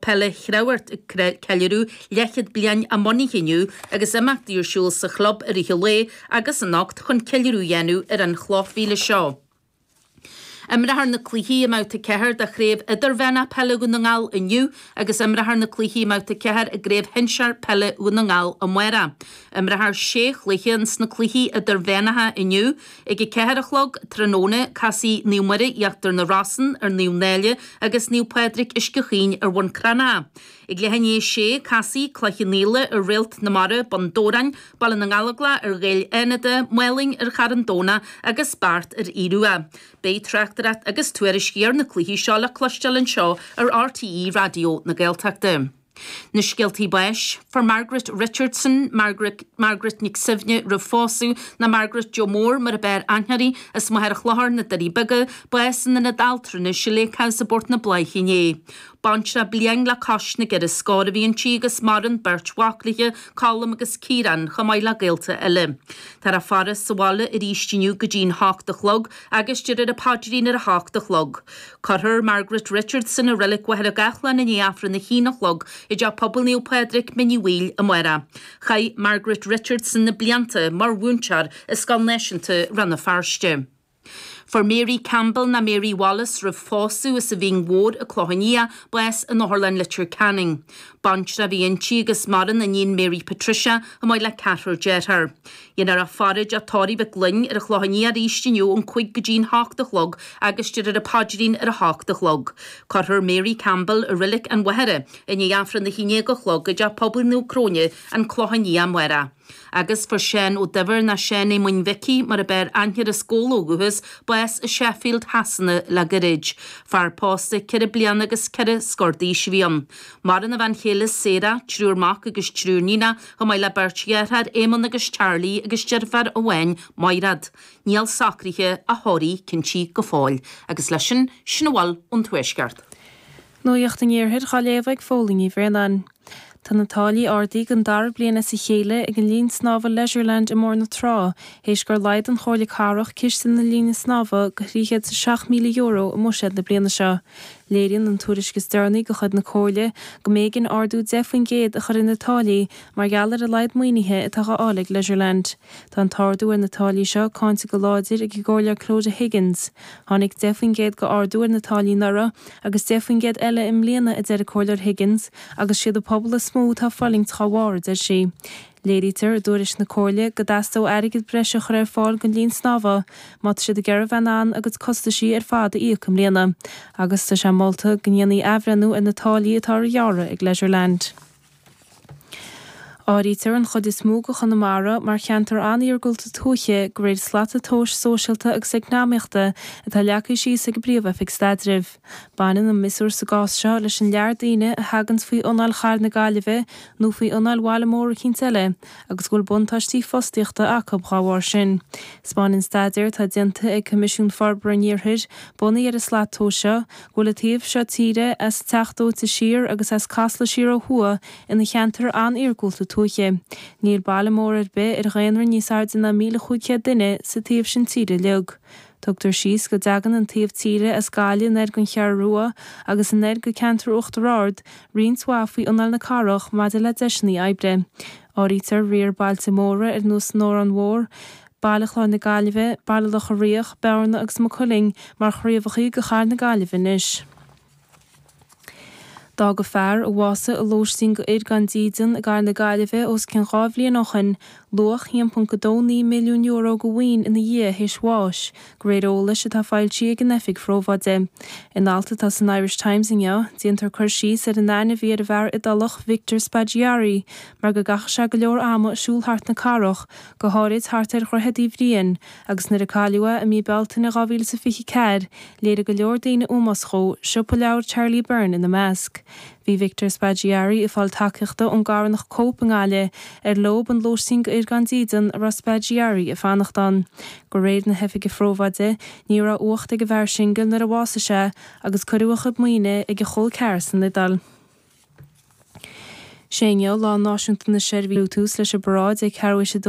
Peile Chreamhghoirt ag ceiliúradh leathchéad bliain a mbunaithe inniu agus imeachtaí ar siúl sa chlub i rith an lae agus anocht chun ceiliúradh a dhéanamh ar an chloch mhíle seo. Imreofar na cluichí i mbabhta 4 de Chraobh Idirmheánach Peile Dhún na nGall inniu agus imreofar na cluichí i mbabhta 4 i gCraobh Shinsear Peile Dhún na nGall amáireach. Imreofar sé chluiche ins na cluichí idirmheánacha inniu. Ag a ceathair a chlog tráthnóna casfaidh Naomh Muire Íochtar na Rosann ar Naomh Náille agus Naomh Pádraig Uisce Chaoin ar Bhun Cranncha. Ag leath i ndiaidh a sé casfaidh Cloich Cheann Fhaola ar Réalt na Mara, Bun Dobhráin, Baile na nGallóglach ar Ghaeil Fhánada, Málainn ar Charn Domhnach agus Beart ar Aodh Rua. Beidh tráchtaireacht agus tuairiscí ar na cluichí seo le cloisteáil anseo ar RTÉ Raidió na Gaeltachta. Na scéaltaí báis, fuair Margaret Richardson, Margaret Nic Suibhne roimh phósadh, ná Margaret Joe Mór mar a b'fhearr aithne uirthi, as Machaire Chlochair na Doirí Beaga, bás in ionad altranais an Lake House i bPort na Bláiche inné. Baintreach bliain le cois na gceithre scór a bhí inti agus maireann beirt mhac léi, Colm agus Ciarán, chomh maith le gaolta eile. Tá an fhaire sa bhaile arís inniu go dtí'n hocht a chlog agus déarfar an paidrín ar a hocht a chlog. Cuirfear Margaret Richardson i Reilig Mhachaire Gathlán i ndiaidh Aifreann a haon a chlog i dTeach Pobail Naomh Pádraig, Mín Uí Bhaoill, amárach. Chaith Margaret Richardson na blianta mar mhúinteoir i Scoil Náisiúnta Rann na Feirste. Fuair Mary Campbell, ná Mary Wallace roimh phósadh, as an Mhín Mhór, an Clochán Liath, bás in Otharlann Leitir Ceanainn. Baintreach a bhí inti agus maireann iníon Mary Patricia, chomh maith le ceathrar dearthár. Déanfar í a fhaire i dteach tórraimh Mhic Fhloinn ar an Chlochán Liath arís inniu ón cuig go dtí'n h-ocht a chlog agus déarfar an paidrín ar a h-ocht a chlog. Cuirfear Mary Campbell, i reilig an Mhachaire, i ndiaidh aifreann a haon déag a chlog i dteach pobail Naomh Cróine an Clochán Liath amárach. Agus fuair Seán Ó Duibhir ná Seán Éamoinn Mhicí mar a b'fhearr aithne air as Gabhla ó dhúchas bás i Sheffield, Shasana, le gairid. Fear pósta, ceithre bliana agus ceithre scór d'aois a bhí ann. Maireann a bhean chéile Sarah, triúr mac agus triúr níonach, Chomh maith le beirt dheartháir, Éamonn agus Charlie, agus deirfiúr amháin, Maighreád. Níl socruithe a thórraimh cinntithe go fóill. Agus leis sin, sin a bhfuil ón Tuaisceart. Nuacht an Iarthair dhá léamh ag Fódhla Ní Bhraonáin. Tá na táillí ardaithe don dara bliain as a chéile ag an linn snámha Leisureland i mBóthar na Trá théis gur laghdaigh an Chomhairle Cathrach ciste na linne snámha go €307,000 i mbuiséad na bliana seo. Léiríonn an tuairisc is deireanaí de chuid na Comhairle go mb'éigean ardú 10 faoin gcéad a chur ar na táillí mar gheall ar a laghad maoinithe atá á fháil ag Leisureland. Tá an t-ardú ar na táillí seo cáinte go láidir ag an gComhairleoir Clodagh Higgins. Tháinig 10 faoin gcéad d'ardú ar na táillí anuraidh agus 10 faoin gcéad eile i mbliana a deir an Comhairleoir Higgins agus siad an pobal is mó atá ag fulaingt dá bharr, a deir sí. Léirítear i dtuairisc na Comhairle go dteastódh airgead breise a chur ar fáil don linn snámha má tá siad ag iarraidh a bheith in ann a gcuid costaisí ar fad a íoc i mbliana agus tá sé molta go ndéanfaí athbhreithniú ar na táillí atá á ngearradh ag Leisureland. Áirítear an chuid is mó de Chonamara mar cheantar an-iargúlta tuaithe de réir slata tomhais sóisialta agus eacnamaíochta atá leagtha síos ag an bPríomh-Oifig Staidrimh. Baineann an miosúr sa gcás seo leis an lear daoine a thaganns faoi anáil Chathair na Gaillimhe nó faoi anáil bhaile mór eicínt eile agus go bhfuil buntáistí fostaíochta acu dhá bharr sin. 'Spáineann staidéar atá déanta ag Coimisiún Forbartha an Iarthair, bunaithe ar an slat tomhais seo, go bhfuil an taobh seo tíre, as Teach Dóite siar agus as Casla siar ó thuaidh, ina cheantar an-iargúlta tuaithe. Níl baile mór ar bith ar dhaonra níos airde ná míle cúig chéad duine sa taobh sin tíre uilig. Tugtar faoi deara go dtagann an taobh tíre as Gaillimh aniar go dtí an Cheathrú Rua agus aniar go ceantar Uachtar Ard roinnt mhaith faoi anáil na cathrach maidir le deiseanna oibre. Áirítear riar bailte móra ar nós an Órán Mhór, Baile Chláir na Gaillimhe, Baile Locha Riach, Bearna agus Maigh Cuilinn mar chraobhachaí de Chathair na Gaillimhe anois. D'fhág fear, a bhásaigh i lóistín do fhir gan dídean i gCathair na Gaillimhe os cionn dhá bhliain ó shin, luach €1.29 milliún de mhaoin ina dhiaidh théis bháis, de réir eolais atá foilsithe ag an Oifig Phrobháide. In alt atá san Irish Times inniu, déantar cur síos ar an aithne a bhí ar an bhfear Iodálach Victor Spaggiari mar go gcaitheadh sé go leor ama ag siúl thart na cathrach, go háirid thart ar Dhroichead Uí Bhriain, Agus nuair a cailleadh é i mí Bealtaine 2024, léirigh go leor daoine ómós dhó, siopa leabhar Charlie Byrne ina measc. Bhí Victor Spaggiari ag fáil tacaíochta ón gCarthanacht Cope i nGaillimh, ar leob an lóistín do fhir gan dídean a raibh Spaggiari ag fanacht ann. De réir na hOifige Probháide, ní raibh uacht ag an bhfear singil nuair a bhásaigh sé, agus cuireadh a chuid maoine ag a chol ceathar san Iodáil. Seo é Lá Náisiúnta na Seirbhísí Beidh tús leis an bparáid ag ceathrú théis a dó